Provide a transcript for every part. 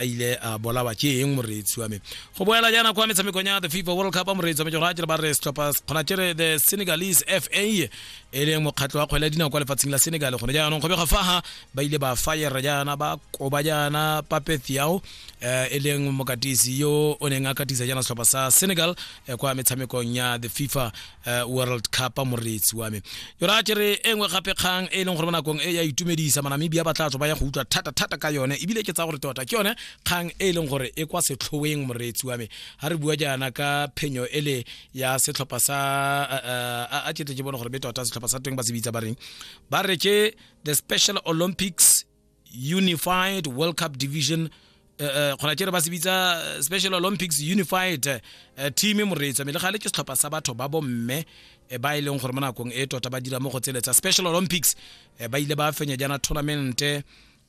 a ile a bolawa ke eng moreetsi wa me go boela jaana kwa metshamekong ya the fifa world cup moreetsi wa me ke gore a ba re setlhopha kgona kere the senegalese fa e leng mokgatlho wa kgwele ya dinao kwa lefatsheng la senegal gone jaanong go bega faga ba ile ba fire jaana ba koba jaana papeth yao um eh, e leng mokatisi yo o neng a katisa jaana setlhopha sa senegal eh, kwa metshamekong ya the fifa uh, world cup moreetsi wa me yona a kere e nngwe gape kgang e e leng gore mo nakong e ya itumedisa manamibia ba tla tswa ba ya go utlwa thata-thata ka yone ebile ke tsa gore tota ke yone kgang e e leng gore e kwa setlhoeng moreetsi wa me ga re bua jaana ka phenyo ele ya setlhopha sa uh, uh, a ketle ke bone gore be tota setlhopha sa teng ba se bitsa ba reng ba re ke the special olympics unified world cup division eh, eh, kgona kere ba se bitsa eh, special olympics unified eh, team moreetsa mme le gale ke setlhopha sa batho ba bomme eh, ba e leng gore mo nakong e tota ba dira mo go tsele tsa special olympics eh, ba ile ba fenya jaana tournament eh,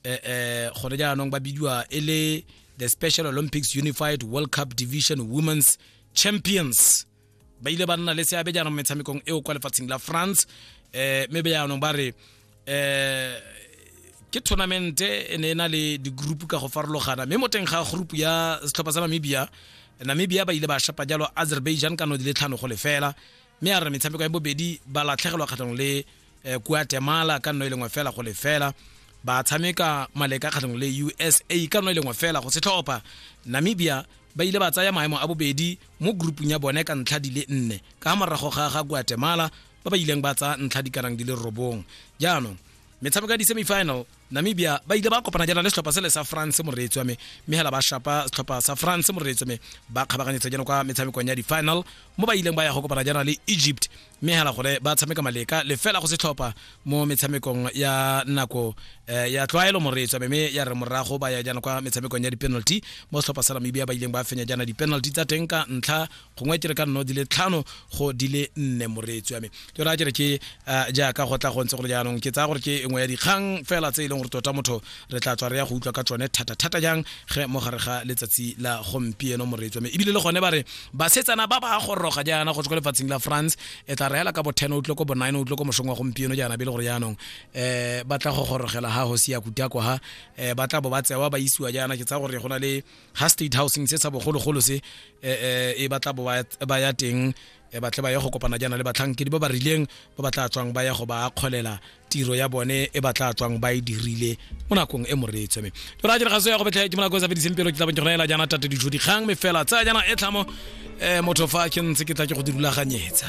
eh, gone jaanong ba bidiwa e le the special olympics unified world cup division women's champions ba ile ba nna le seabe jaanong metshamekong eo kwa lefatsheng la france um mme be jaanong ba re um ke tournamente e ne e na le di-group ka go farologana mme mo teng ga group ya setlhopha sa namibia namibia ba ile ba shapa jalo azerbaijan ka no di le tlhano go lefela mme a re metshameko ya bobedi ba latlhegelwa kgatlhanong le eh, kuatemala ka nno e lengwe fela go lefela ba tshameka maleka kgatlhanong le usa ka nno e lengwe fela go setlhopha namibia ba ile ba tsaya maemo a bobedi mo groupung ya bone ka ntlha di le nne ka morago ga ga guatemala ba ba ileng ba tsaya ntlha di kanang di le robong jaanong metshameko ya di-semifinal namibia ba ile ba kopana jaana le setlhopha sele sa france moreetsi wa me mme hela ba shapa setlhopha sa france moreetsi me ba kgabaganyetsa jaana kwa metshamekong ya di-final mo ba ileng ba ya go kopana jaana le egypt mme hela gore ba tshameka maleka lefela go setlhopha mo metshamekong ya nako eh, ya tlwaelo moreetsi wa me mme ya re morago ba ya jaana kwa metshamekong ya di-penalty mo setlhopha sa namibia ba ileng ba fenya jaana di-penalty tsa teng ka ntlha gongwe ke re ka nno di le tlhano go di le nne moreetsi wa me ke raya kere ke eh, jaaka go tla go ntse gore jaanong ke tsaya gore ke nngwe ya dikgang fela tse e leng gore tota motho re tla tswa re ya go utlwa ka tsone thata-thata jang ge mo gare ga letsatsi la gompieno moreetsi wa me ebile le gone ba re basetsana ba ba goroga jaana go tswa ko lefatsheng la france e tla reela ka bo 10 o utlwe ko bo 9 o utlwe ko mosong wa gompieno jaana be e le gore jaanong um ba tla go gorogela ha hosi ya kutako ha um ba tla bo ba tsewa ba isiwa jaana ke tsaya gore go na le ha state housing se sa bogologolo se eh, eh, e batla ba ya teng e batle ba ye go kopana jaana le batlhankedi ba ba rileng ba ba tla tswang ba ya go ba kgolela tiro ya bone e ba tla tswang ba e dirile mo nakong e moreetswe me jora a diragaso ya go betlha ke mo nakong e sa fediseng pelo ke tla bong ke gona ela jaana tate dijo dikgang me fela tsaya jaana e tlhamo um motho fa ke ntse ke tla ke go dirulaganyetsa